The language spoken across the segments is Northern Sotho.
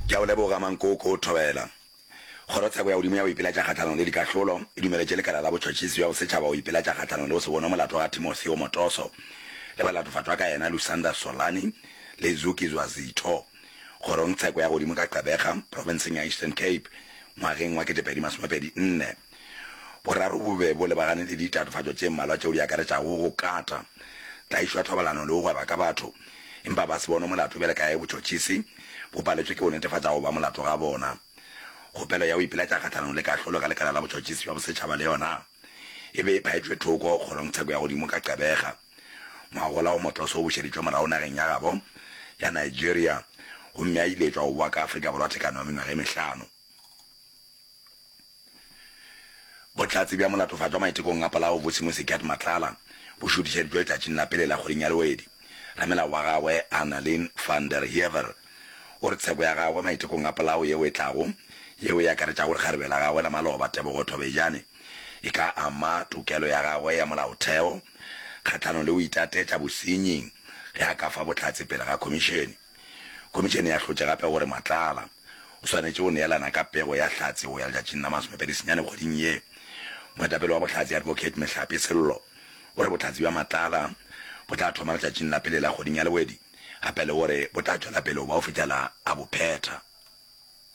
Ke a go leboga, Mankoko Thobela. Kgorotsheko ya godimo ya go ipiletša kgahlanong le dikahlolo e dumeletše Lekala la Botšhotšhisi bja Bosetšhaba go ipiletša kgahlanong le go se bonwe molato ga Timothy Omotoso le balatofatšwa ka yena Lusanda Solani le Zuki Zwazitho kgorongtsheko ya godimo ka Gqeberha, profenseng ya Eastern Cape, ngwageng wa 2024. Boraro bo be bo lebagane le ditatofatšo tše mmalwa tšeo di akaretšago go kata, tlaišo ya thobalano le go gweba ka batho, empa ba se bonwe molato bjale ka ge botšhotšhisi bo paletšwe ke go netefatša go ba molato ga bona. Kgopelo ya go ipiletša kgahlanong le kahlolo ka Lekala la Botšhotšhisi bja Bosetšhaba le yona e be e phaetšwe thoko kgorongtsheko ya godimo ka Gqeberha ngwagola wo motloso o bušeditšwe morago nageng ya gabo ya Nigeria gomme a iletšwa go bowa ka Afrika Borwa thekano ya mengwaga e mehlano. Bohlatse bja molatofatšwa maitekong a polao bo Simo Sekiat Matlala bo šuthišeditšwe letšatšing la pele la kgweding ya Lewedi. Ramelao wa gagwe Annalyn van der Heever o re tsheko ya gagwe maitekong a polao yeo e tlago, yeo e akaretšago lekgarebe la gagwe la maloba Tebogo Thobejane, e ka ama tokelo ya gagwe ya molaotheo kgahlanong le go itatetša bosenyi ge a ka fa bohlatse pele ga khomišene. Khomišene ya hlotše gape gore Matlala o swanetše go neelana ka pego ya Hlatse go ya letšatšing la masomepedi senyane kgweding ye. Moetapele wa Bohlatse Advocate Mehlape Sello o re bohlatse bja Matlala bo tla thoma letšatšing la pele la kgweding ya Lewedi gape le gore bo tla tšwela pele go ba go fihlela a bo phetha.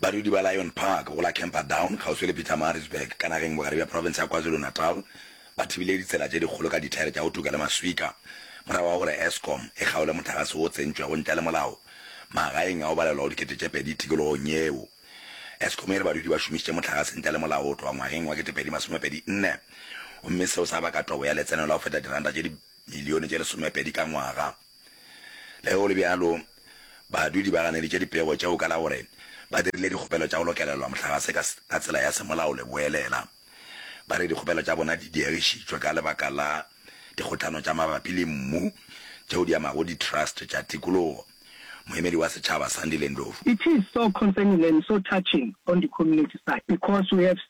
Badudi ba Lion Park go la Camperdown kgauswi le Pietermaritzburg ka nageng bogare bja profense ya KwaZulu-Natal ba thibile ditsela tše dikgolo ka dithaere tša go tuka le maswika morago ga gore Eskom e kgaole motlagase wo o tsentšwego ntle le molao magaeng a go balelwago dikete tše pedi tikologong yeo. Eskom e re badudi ba šomišitše motlagase ntle le molao go tloga ngwageng wa ketepedi masomepedi nne gomme seo sa baka tobo ya letseno la go feta diranta tše dimilione tše lesomepedi ka ngwaga. Le ge go le bjalo, badudi ba ganeditše dipego tšeo ka la gore ba dirile dikgopelo tša go lokelelwa mohlagase ka ka tsela ya semolao le boelela. Ba re dikgopelo tša bona di diegišitšwe ka lebaka la dikgohlano tša mabapi le mmu tšeo di amago di-trust tša tikologo. Moemedi wa setšhaba Sandile Ndlovu. It is so concerning and so touching on the community side because we have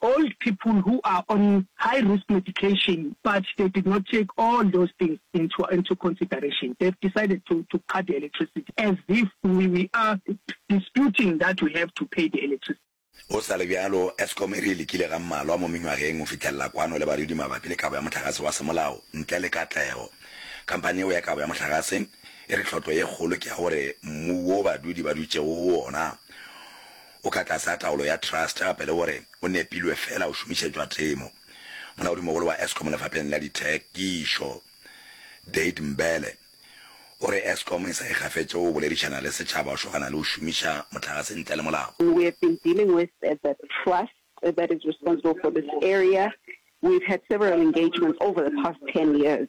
Old people who are on high risk medication but they did not take all those things into into consideration they've decided to to cut the electricity as if we we are disputing that we have to pay the electricity. Go sa le bjalo, Eskom e re e lekile ga mmalwa mo menywageng go fitlhelela kwano le barwedi mabapi le kabo ya mohlagase wa semolao ntle le katlego. Khamphani yeo ya kabo ya mohlagase e re tlhotlo ye kgolo ke ya gore mmu wo badwedi ba dutšego go wona o ka tlasa taolo ya trust gape le gore o nepilwe feela o šomišetšwa temo. Molaodimogolo wa Eskom lefapheng la dithekišo, Dade Mbele, o re Eskom e sa ikgafetše go boledišana le setšhaba go šogana le go šomiša mohlagase ntle le molao. We have been dealing with the trust that is responsible for this area, we've had several engagements over the past ten years.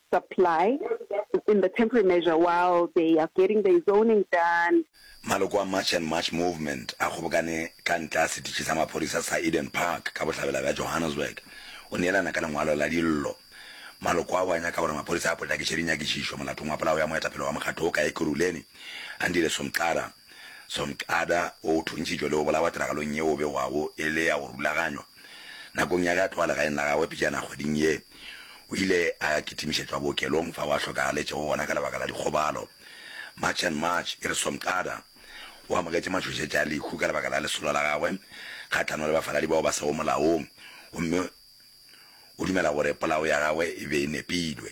supply in the temporary measure while they are getting their zoning done. Maloko a March and March Movement a kgobokane ka ntle a setitši sa maphodisa sa Eden Park ka bohlabela bja Johannesburg go neelana ka lengwalo la dillo. Maloko ao a nyaka gore maphodisa a potlakiše dinyakišišo molatong wa polao ya moetapele wa mokgatlo wo ka Ekurhuleni, Andile Somqada Somqada wo o thuntšitšwe le go bolawa tiragalong yeo o begwago e le ya go rulaganywa. Nakong ya ge a tloga legaeng la gagwe pejana kgweding ye, o ile a kitimišetšwa bookelong fao a hlokagaletšego gona ka lebaka la dikgobalo. March and March e re Somqada o amogetše matšhošetša a lehu ka lebaka la lesolo la gagwe kgahlano le bafaladi bao ba sego molaong gomme o dumela gore polao ya gagwe e be e nepilwe.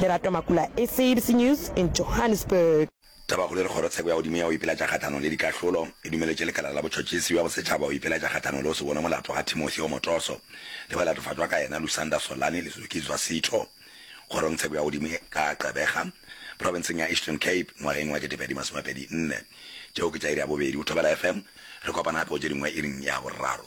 Lerato Makula, SABC News in Johannesburg. Tabakgolo e re kgorotsheko ya godimo ya go ipelatša kgahlanong le dikahlolo e dumeletše lekala la botšhotšhisi bja bosetšhaba go ipelatša kgahlanong le go se bonwe molato ga Timothy Omotoso le ba latofatšwa ka yena Lusanda Solani le Zuki Zwasitho kgorongtsheko ya godimo ka Gqeberha profenseng ya Eastern Cape ngwageng wa 2024. Tšeo ke tša iri ya bobedi go Thobela FM. Re kopana gape go tše dingwe iring ya boraro.